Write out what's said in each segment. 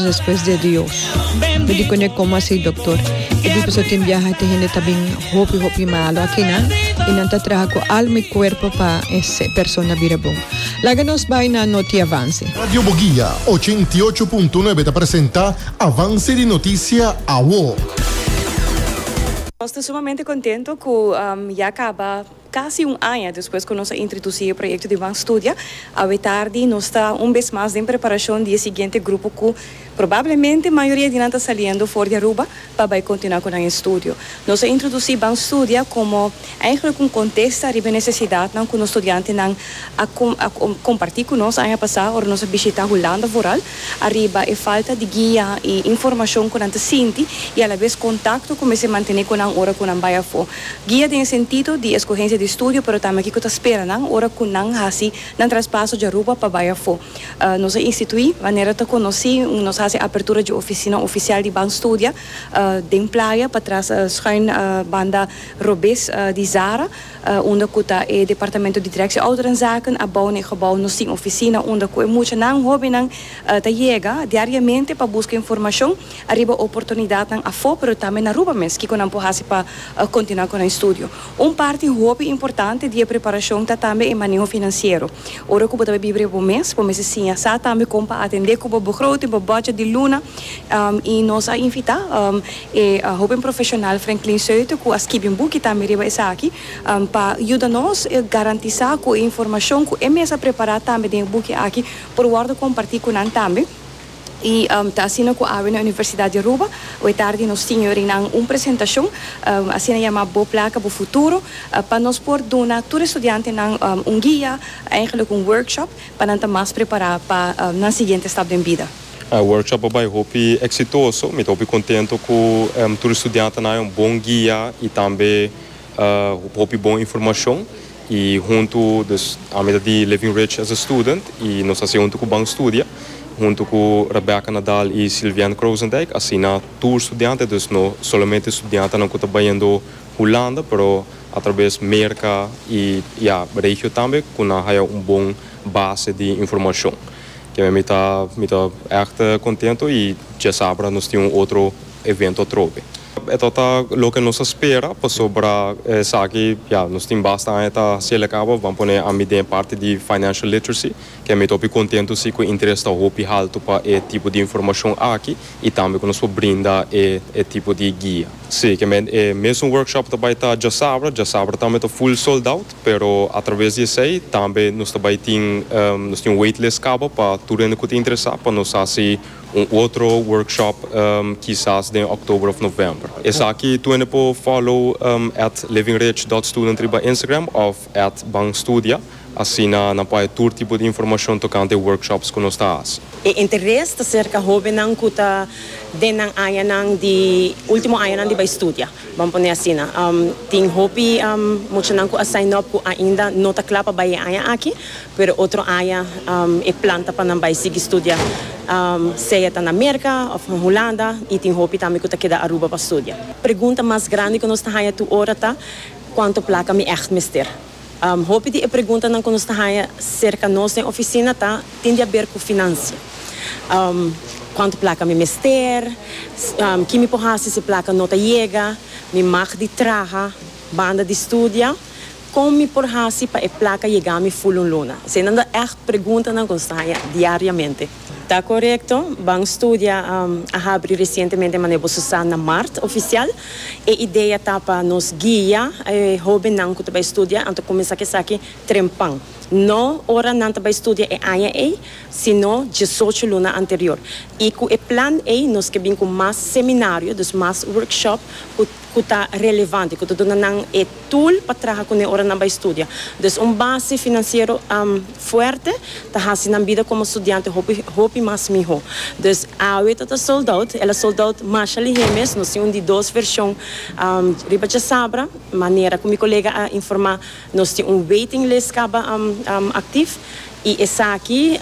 Despues de Dios. Yo di cone como así, doctor. Yo di pues tin viaja te gente tabin hopi hopi malo aquí nan. Y nan ta traha cu alma y cuerpo pa ese persona bira bon. Laga nos bai na noti avance. Radio Boguia, ochenta i ocho punto nuebe ta presenta Avance di Noticia Awo. Nos ta sumamente contento cu ya caba. Casi un aña despues cu nos a introduci e proyecto di Ban Studia, awe tardi nos ta un bes mas den preparacion di e siguiente grupo cu probablemente mayoria di nan ta saliendo for di Aruba pa bay continua cu nan estudio. Nos a introduci Ban Studia como eigenlijk un contesta riba e necesidadnan cu nos studiantenan a comparti cu nos aña pasa ora nos a bishita Hulanda vooral ariba e falta di guia y informacion cu nan ta sinti y alabes contacto cu mester mantene cu nan ora cu nan bay afo. Guia den e sentido di escogencia di studio pero tambe kico ta spera nan ora cu nan haci nan traspaso dje Aruba pa bai afo. Nos a institui manera ta conoci un nos haci apertura dje oficina oficial di Ban Studia den Playa patras schuin banda robes di Zara unda cu ta e departamento di directie ouderenzaken abao n'e gebouw nos tin oficina unda cu e muchanan hobennan ta yega diariamente pa busca informacion ariba oportunidatnan afó pero tambe na Aruba mes, kiko nan por hasi pa kontinuá ku nan estudio. Un parti hopi importante di e preparashon ta tambe e maneho finansiero. Ora ku bo ta bai biba riba bo mes, bo mester siña sa tambe kon pa atendé ku bo begroting, bo bòdjèt di luna, i nos a invitá e hoben profeshonal Franklin Soeter ku a skibi un buki tambe riba esaki pa yuda nos garantisá ku e informashon ku e mes a prepará tambe den e buki aki por wòrdu kompartí ku nan tambe. Y ta asina cu awe na Universidad di Aruba. Awe tardi nos tin yorinan un presentacion, asina yama Bo Placa, Bo Futuro, pa nos por duna tur estudiantenan un guia, eigenlijk un workshop, pa nan ta mas prepara pa nan siguiente stap den bida. E workshop a bay hopi exitoso. Mi ta hopi contento cu tur estudiantenan a haña un bon guia y tambe hopi bon informacion. Y hunto, dus ami ta di Living Rich as a student y nos haci hunto cu Bang Studia, hunto cu Rebecca Nadal y Sylviane Croosendijk, asina tur studiante, dus no solamente studiantenan cu ta bayendo Hulanda, pero a traves Merca y ya regio tambe cu nan haya un bon base di informacion. Kimen mi ta, mi ta echt contento y dje sabra nos tin un otro. evento atrobe. E ta ta loke nos a spera pasobra esaki ya nos tin basta aña ta hasiel e cabo ban pone ami den e parti di financial literacy ke ami ta hopi contento si cu e interes ta hopi halto pa e tipo di informacion aki y tambe cu nos por brinda e e tipo di guia. Si, ke men e mesun workshop ta bay ta djasabra, djasabra tambe ta full sold out pero atraves di esey tambe nos ta bay tin nos tin un waitlist cabo pa tur hende cu ta interesa pa nos hasi Un otro workshop kisas den oktober of november. Esaki tu hende por follow at livingridge.student riba Instagram of at banstudia, asina nan por haya tur tipo di informashon tocante e workshops cu nos ta haci. E interes ta cerca hobennan cu ta den nan añanan di, ultimo añanan di bay studia, ban pone asina. Tin hopi muchanan cu a sign up cu ainda no ta cla pa bay e aña aki, Pero otro aña e plan ta pa nan bai sigui studia, sea ta na Merka of na Hulanda, y tin hopi tambe cu ta keda Aruba pa studia. Pregunta mas grandi cu nos ta haña tur ora ta, Cuanto placa mi echt mester? Hopi di e preguntanan cu nos ta haña cerca nos den oficina ta tin di haber cu financia. Cuanto placa mi mester? Ki mi por haci si placa no ta yega? Mi mag di traha banda di studia? Kon mi por hasi pa e plaka yega mi ful un luna? Eseinan ta ègt preguntanan ku nos ta haña diariamente. Ta korekto, Ban Studia a habri resientemente manera bo su sa na mart ofisial. E idea ta pa nos guia e hóbennan ku ta bai studia anto kuminsá ku esaki trempan. No ora nan ta bai studia e aña ei, sino diesocho luna anterior. I ku e plan ei nos ke bin ku mas seminario, dus mas workshop ku. ku ta relevante, ku ta duna nan e tool pa traha kuné ora nan bai studia. Dus un base finansiero fuerte ta hasi nan bida komo studiante hopi hopi mas mihó. Dus awe ta ta sold out, el a sold out masha lihé mes, nos tin un di dos vershon riba dje sabra, manera ku mi kolega a informá nos tin un waiting list kaba aktif i esaki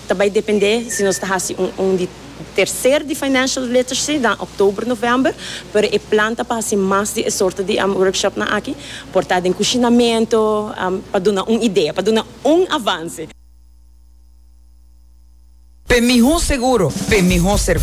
ta bai dependé si nos ta hasi un di. Tercer di financial literacy na october november, pero e plan ta pa haci mas di e sorto di workshopnan aki, por ta den cushinamento, pa duna un idea, pa duna un avance. Pe miho seguro, pe miho.